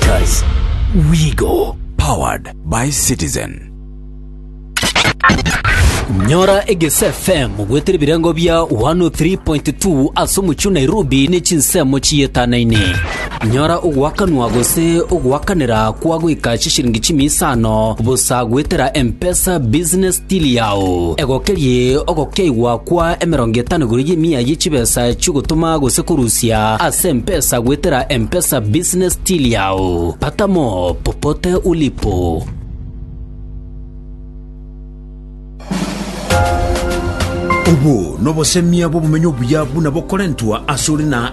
'Cause we go. Powered by Citizen. Nyora Egese FM gwetera ebirengo bia 103.2 ase omochie o Nairobi ne chinsemo chietanaine. Nyora ogoakanwa gose ogoakanera kwa goika chishiringi chimia isano bosa gwetera M-Pesa Business Tiri ao, egokerie ogokeigwa kwa emerongo etano igoro y'emia ye chibesa chi'ogotoma gose korusia ase empesa goetera M-Pesa Business Till yao. Pata mo popote ulipo. Obo nobosemia bw'obomenyo obuya buna bokorentwa asore na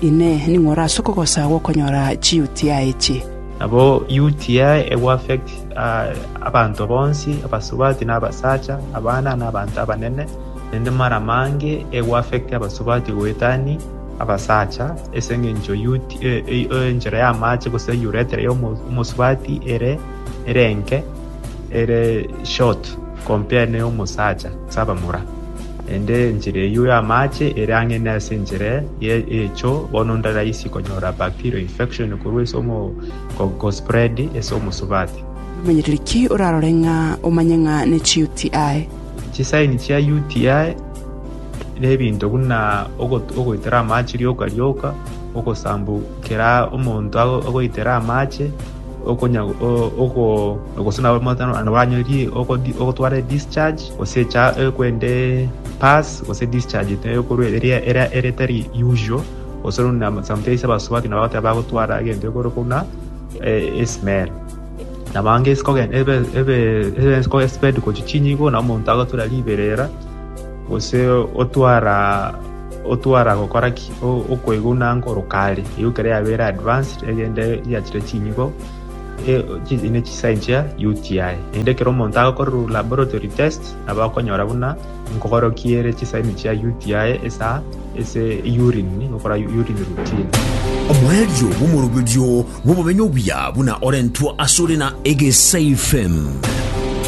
Inee! Ning'o orase okogosagwa okonyora chi-UTI echio? Nabo UTI egoaffect abanto bonsi, abasubati na abasacha, abana na abanto abanene, naende mara mange egoaffect abasubati goetani abasacha, ase engencho enchera y'amaache gose urethra ya omosubati ere ere enke, ere short compared ne y'omosacha, ase abamura. Naende enchera eyio y'amaache ere ang'e nase enchera y'egecho, bono ndaraisi konyora bacterial infection korwa ase gospread ase omosubati. Omonyereria ki orarore ng'a omanye ng'a ne chi UTI? Chisaini chia UTI nebinto buna ogoitera amaache rioka rioka, ogosambukera omonto agoitere amaache, gose nabo motano banyorie ogotwara edischarge gose ekwende pass gose edischarge ekorwa eria etari usual gose sometimes abasubati nabo bagoteba bagotwara egento ekoro buna esmell nabo ange ebe espend gochia chinyigo nabo omonto agotura riberera. Gose otwara otwara gokora ki? Okoiguna nkoro kare, eyio ekero yabeire advanced egende yachire chinyigo ne chisaini chia UTI. Naende ekero omonto agokorerwa laboratory test nabo akonyora buna nkogorokia ere chisaini chia UTI esa ase urine gokora urine routine. Omoerio bw'omoroberio bw'obomenyo obuya buna orentwe asore na egesaifem.